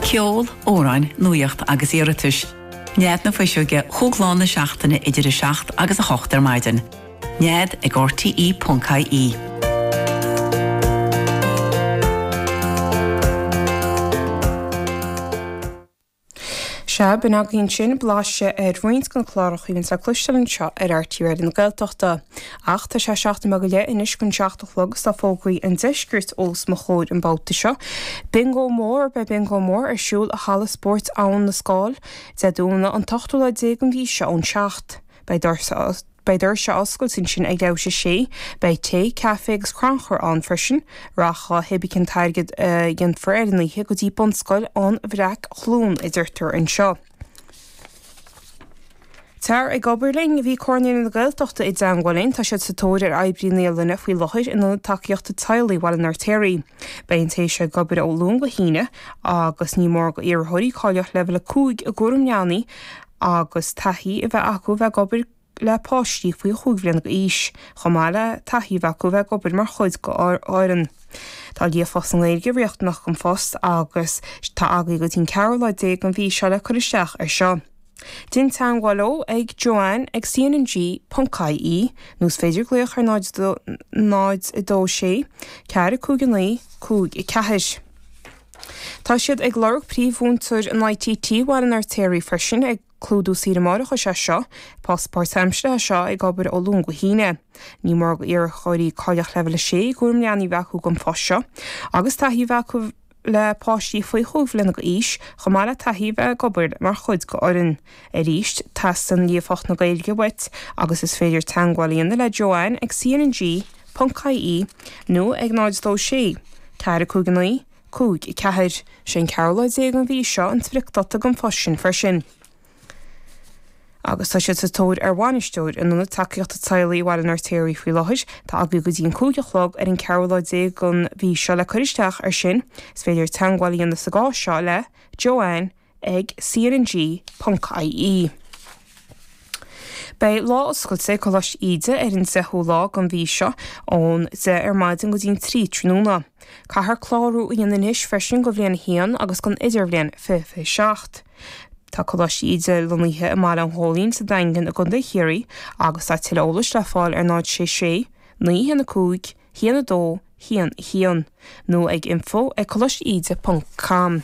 Ceol, amhráin, nuaíocht agus iarratais. Nead na Fuiseoige chúig lá na seachtaine idir 7 agus 8 ar maidin. Nead ag RTE.ie. Sea, b'in againn sin, blaiseadh ar roinnt de na cláracha a bhíonns le cloisteáil anseo ar RTÉ Raidió na Gaeltachta. Ach tá sé seacht nóiméad go leith anois chun 7 a chlog agus tá fógraí an deiscirt os mo chomhair an babhta seo. Bingo mór, beidh Bingo mór ar siúl i Halla Spóirt Abhann na Scáil, Dé Domhnaigh an t-ochtú lá déag den mhí seo ón seacht. Beidh doirse. Beidh doirse ag oscailt ansin ag a 6. Beidh tae, caife agus crannchur ann freisin. Rachaidh dhá thae beag an t-airgead a dhéanfar ar an oíche go dtí Bunscoil an Bhreac Chluain, a deirtear anseo. Tar ag obair linn! Bhí Comhar Naíonraí na Gaeltachta i dteagmháil linn. Tá siad sa tóir ar oibrí naíolainne faoi láthair in Ionad Tacaíochta Teaghlaigh Bhaile an Fheirtéaraigh. Beidh an té seo ag obair ó Luan go hAoine agus ní mór d'iarrthóirí cáilíocht Leibhéal 5 i gCúram Leanaí, agus taithí a bheith acu a bheith ag obair le páistí faoi chúig bhliana d'aois, chomh maith le taithí a bheith acu a bheith ag obair mar chuid d'fhoireann. Tá líofacht sa nGaeilge riachtanach don phost agus tá agaí go dtí an ceathrú lá déag den mhí seo le cur isteach ar seo. Déan teagmháil leo ag Joanne ag cnng.ie nó is féidir glaoch ar 026 459 5 4. Tá siad ag lorg príomh-mhúinteoir in ITT Bhaile an Fheirtéaraigh freisin ag clúdú saoire mháithreachais é seo post páirtaimseartha é seo ag obair ó Luan go hAoine. Ní mór d'iarrthóirí cáilíocht leibhéal 6 i gcúram leanaí a bheith acu don phost seo agus taithí a bheith acu le páistí faoi chúig bhliana d'aois chomh maith le taithí a bheith ag obair mar chuid d'fhoireann Arís, teastaíonn líofacht na Gaeilge uait agus is féidir teagmháil a dhéanamh le Joanne ag cnng.ie nó ag 026 459 54. Sé an ceathrú lá déag den mhí seo an spriocdáta don phost sin freisin agus tá siad sa tóir ar bhainisteoir in Ionad Tacaíochta Teaghlaigh Bhaile an Fheirtéaraigh faoi láthair. Tá agaí go dtí an cúig a chlog ar an ceathrú lá déag den mhí seo le cur isteach ar sin. Is féidir teagmháil a dhéanamh sa gcás seo le Joanne ag. ag cnng.ie. Beidh Lá Oscailte ag Coláiste Íde ar an 10ú lá den mhí seo, ón 10 ar maidin go dtí an 3 tráthnóna. Caithfear clárú a dhéanamh anois freisin do bhliain 1 agus don idirbhliain 2027. Tá Coláiste Íde lonnaithe i mBaile an Ghóilín sa Daingean i gContae Chiarraí agus tá tuilleadh eolais le fáil ar 066 915 1211 nó ag info@colaisteide.com.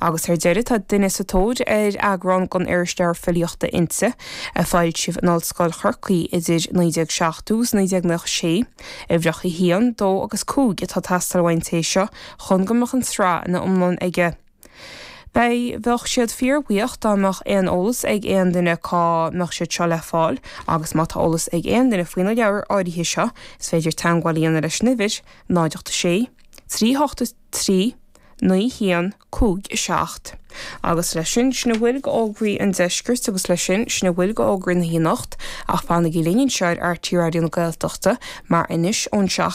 Agus ar deireadh, tá duine sa tóir ar eagrán den irisleabhar filíochta Innti, a foilsíodh in Ollscoil Chorcaí idir 1970 agus 1996. Uimhreacha 1, 2 agus 5 atá ag teastáil uaidh an té seo chun go mbeadh an tsraith ina iomlán aige. Beidh, bheadh siad fíorbhuíoch dá mbeadh aon eolas ag aon duine cá mbeadh siad seo le fáil agus má tá eolas ag aon duine faoi na leabhair áirithe seo is féidir teagmháil a dhéanamh leis an uimhir, 0 8 6 3 8 3, 9 1, 5, 7. Agus leis sin, sin a bhfuil d'fhógraí an deiscirt agus leis sin, sin a bhfuil d'fhógraí na hanocht ach fanaigí linn anseo ar RTÉ Raidió na Gaeltachta mar anois ón seacht